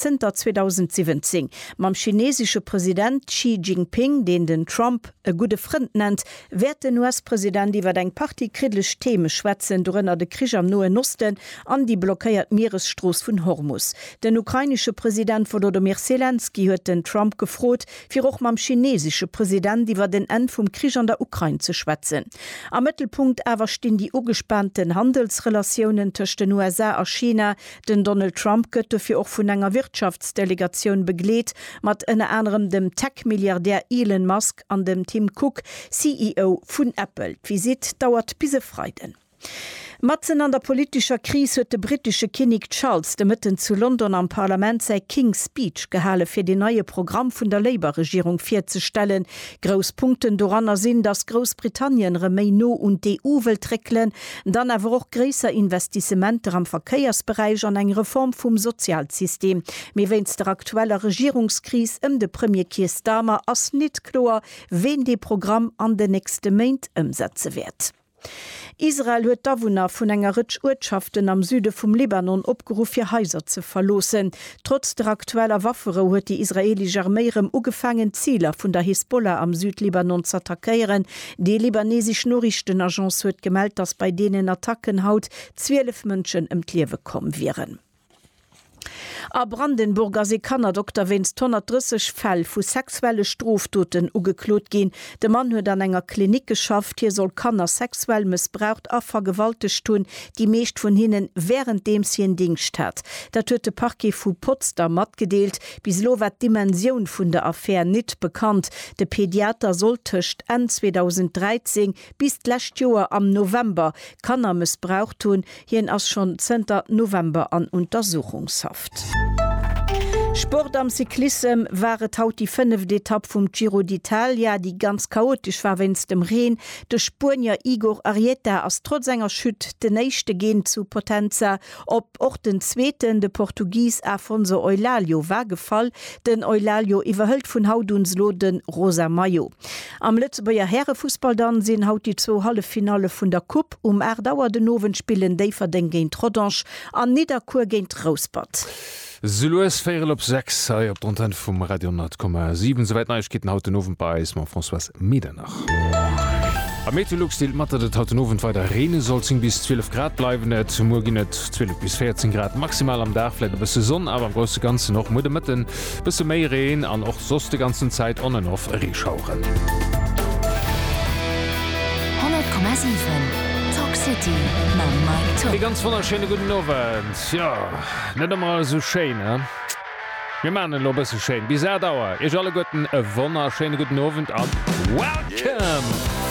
zënter 2017. Mam chinesesche President Xi Jinping, deen den Trump e gudde Frënd nennt, wäert den US-President iwwer eng Partie kriddlech Theme schwätzen, dorënner de Krich am Noen Osten an déi blockéiert Mieresstrooss vun Hormus. Den ukrainesche President Wolodomyr Selenskyj huet den Trump gefrot, fir och mam chinesesche President iwwert en Enn vum Krich an der Ukrain ze schwätzen. Am Mëttelpunkt awer stinn déi ugespaanten Handelsrelatiounen tëscht den USA a China, Den Donald Trump gëtt dofir och vun enger Wirtschaftsdelegatioun begleet, mat ënner anerem dem Tech-Milliardär Elon Musk an dem Tim Cook, CEO vun Apple. D'Visitt dauert bis e Freiden. Matzen an der politescher Kris huet de brittesche Kinnek Charles de Mëtten zu London am Parlament säi King's Speech gehale fir den neie Programm vun der Labour-Regierung virzestellen. Grouss Punkten doranner sinn, datt Groussbritannien erëm méi no un d'EU wëllt réckelen, Dann awer och gréisser Investissementer am Verkéiersberäich an eng Reform vum Sozialsystem. Mee wéinst der aktueller Regierungskris ëm de Premier Keir Starmer ass nit kloer, ween dee Programm an den nächste Méint ëmsetze wäert. Israel huet d'Awunner vun enger Rëtsch Uertschaften am Süde vum Libanon opgeruff, hir Haiser ze verloossen. Trotz der aktueller Wafferou huet déi israeelesch Arméi rëm ugefaangen, d'Ziler vun der Hisbollah am Südlibanon z'attackéieren. Déi libanesesch Noriichtenagence huet gemellt, datt bei deenen Attacken haut 12 Mënschen ëm d'Liewe komm wieren. A Brandenburg ass ee Kannerdokter wéinst 130 Fäll vu sexuelle Strofdoten ugeklot ginn. De Mann huet an enger Klinik geschafft. Hie soll Kanner sexuell mëssbraucht a vergewaltegt hunn. déi meescht vun hinne wärenddeems hien Dingscht hat. Dat huet de Parquet vu Potsdam matgedeelt. Bis elo war d'Dimensioun vun der Affär nit bekannt. De Pediater sollt tëscht Enn 2013 bis d'lescht Joer am November Kanner mëssbraucht hunn. Hien ass schonn zënter November an Untersuchungshaft. Sport Am Cyclissem war et haut déi fënneft Etapp vum Giro d'Italia, déi ganz chaotesch war wéinst dem Reen. De Spuenier Igor Arrieta ass trotz enger Chute den éischte Geen zu Potenza op. Och den zweeten, de Portugis Afonso Eulálio, war gefall. Den Eulálio iwwerhëlt vun haut un elo de rosa Maillot. Am Lëtzebuerger Härefussball dann sinn haut déi zwou Halleffinalle vun der Coupe. Um 8 Auer den Owend spillen Déifferdeng géint Rodange an Nidderkuer géint Rouspert. Sou lues véierel op 6 hei op der Antenne vum Radio 10,7. Souwäit Neiegkeeten haut den Owend bei eis mam Françoise Medernach. Am Meteolux deelt mat, datt et haut den Owend weider reene sollt. 10 bis 12 Grad bleiwen et. Muer ginn et 12 bis 14 Grad maximal. Am Dag vläit e bësse Sonn, awer am grousse Ganzen och muer de Mëtten e bësse méi Reen an och soss de ganzen Zäit on and off Reeschaueren. 100,7 Talk City mam Mike Tock. Ee ganz wonnerschéine gudden Owend. Tjo, net emmer alles sou schéin, he? Mir maan en lo bësse schéin. Bis 8 Auer, iech alleguerten e wonnerschéine gudden Owend an Welcome!